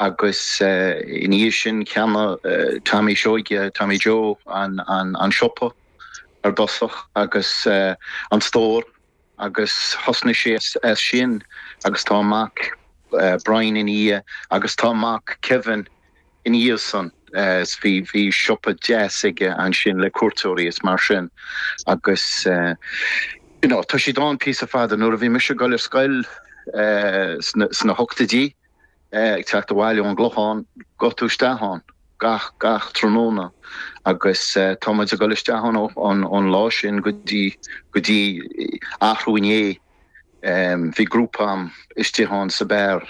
Agus ina dhiaidh sin cheannaigh Tommy Seoige, Tommy Joe, an siopa ar dtosach agus an stór agus thosnaigh sé as sin agus tá a mac Brian ina dhiaidh agus tá a mac Kevin ina dhiaidh san. Bhí siopa deas aige ansin le cuairteoirí is mar sin agus you know tá siad ann píosa fada. Nuair a bhí mise ag dul ar scoil sna hochtaidí, ag teacht abhaile ón gClochán ghabhfadh tú isteach ann gach, gach tráthnóna agus tá muid ag dul isteach ann ón lá sin go dtí, go dtí arú inné, bhí grúpa a'm istigh ann sa beár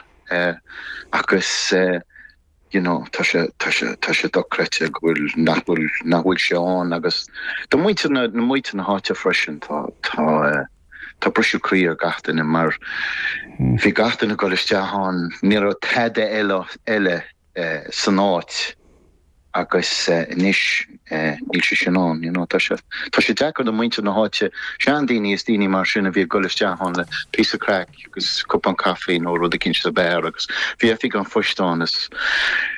agus you know tá sé, tá sé, tá sé dochreidte go bhfuil, nach bhfuil, nach bhfuil sé ann agus do muintir na, do muintir na háite freisin tá, tá. Tá briseadh croí ar gach duine mar bhí gach duine ag dul isteach ann, ní raibh tada eile san áit agus anois níl sé sin ann, you know. Tá sé, tá sé deacair do muintir na háite, seandaoine is daoine mar sin a bhí ag dul isteach ann le píosa craic agus cupán caife nó rud eicínt sa beár agus bhí oifig an phoist ann is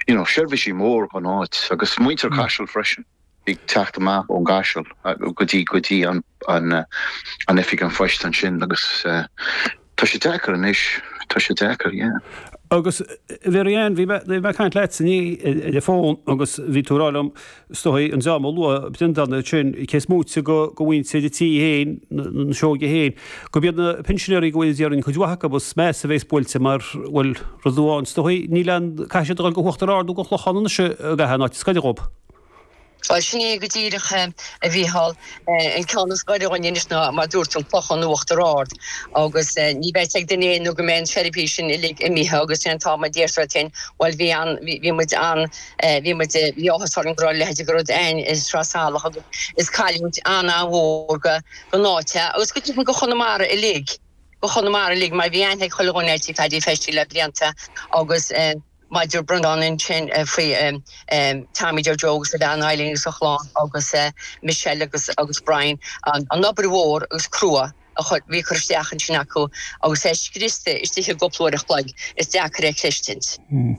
you know seirbhísí mór don áit agus muintir Caiseal freisin. ag teacht amach ón gCaiseal go dtí go dtí an oifig an phoist ansin agus tá sé deacair anois, tá sé deacair, yeah. Agus Mhary-Ann, bhí mé ag caint leat inné ar an bhfón agus bhí tú ag rá liom, is dóigh an dream a luaigh Brendan ansin, cé is moite de mhuintir an tí féin, na Seoigigh féin, go mb'iad na pinsinéirí go háirid, déarfainn, cuid mhaith acu is measa a bhéas buailte mar, bhuel, rud amháin, is dóigh níl an caithfidh siad a dhul go hUachtar Ard nó don Chlochán anois i gcaitheamh an áit, is gaire dhóibh. Bhuel, sin é go díreach, a Mhícheál. An ceann is gaire dhuinn anois ná, mar dúirt tú, an Clochán nó Uachtar Ard. Agus ní bheidh a fhios ag duine é nó go mbeidh an tseirbhís sin uilig imithe agus sin an t-am a déarfar duit fhéin, Bhuel, bhí an, bhí muid an, bhí muid, bhí áthas orainn go raibh a leithide de rud a'inn i Sraith Salach agus is cailliúint an-an-mhór go, don áit a, agus go deimhin do Chonamara uilig, do Chonamara uilig mar bhí aithne ag chuile dhuine ar tí Phaidí Festy le blianta agus eh. Mar a dúirt Brendan ansin faoi Tommy Joe Joe agus a bhean Eileen agus a chlann agus Michelle agus agus Brian an obair mhór agus crua a bhí curtha isteach ansin acu agus é scriosta istigh i gcúpla uair an chloig is deacair é chreistint. Hm.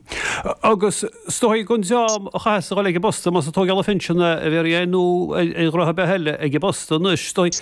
Agus is dóigh go an dream a chaithfeas a dhul ag an bposta más ag tóigeáil an phinsin a bhéarfaidh é nó graithe ar bith eile ag an bposta anois is dóigh.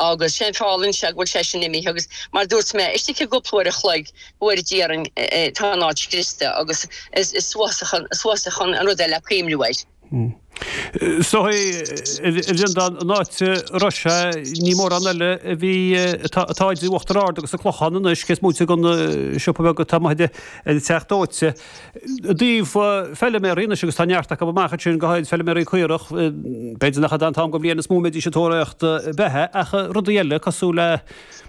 agus sé'n feall anseo go bhfuil sé sin imithe agus mar dúirt mé, istigh i gcúpla uair a chloig, uair déarfainn, tá an áit scriosta agus is uafásach an rud é le cuimhniú air. Is dóigh, a Bhrendan, an áit a raibh sé ní mórán eile ar bith atá idir Uachtar Ard agus an Clochán anois cé is moite den siopa beag atá amuigh ag an Teach Dóite. I dtaobh feiliméaraí anois agus tá neart acu amach ansin, go háirid feiliméaraí caorach, b'fhéidir nach an t-am dhe bhliain is mó a mbeidís ag tóraíocht beatha ach rudaí eile cosúil le,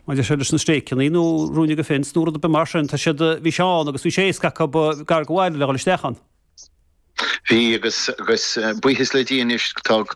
maidir sin, leis na stéiceannaí nó ruainne dhe fence nó rud ar bith mar sin. Tá siad, bhí sé ann agus bhí sé éasca acu gar go bhaile le dhul isteach ann. Bhí agus, agus buíochas le Dia anois tá, tá.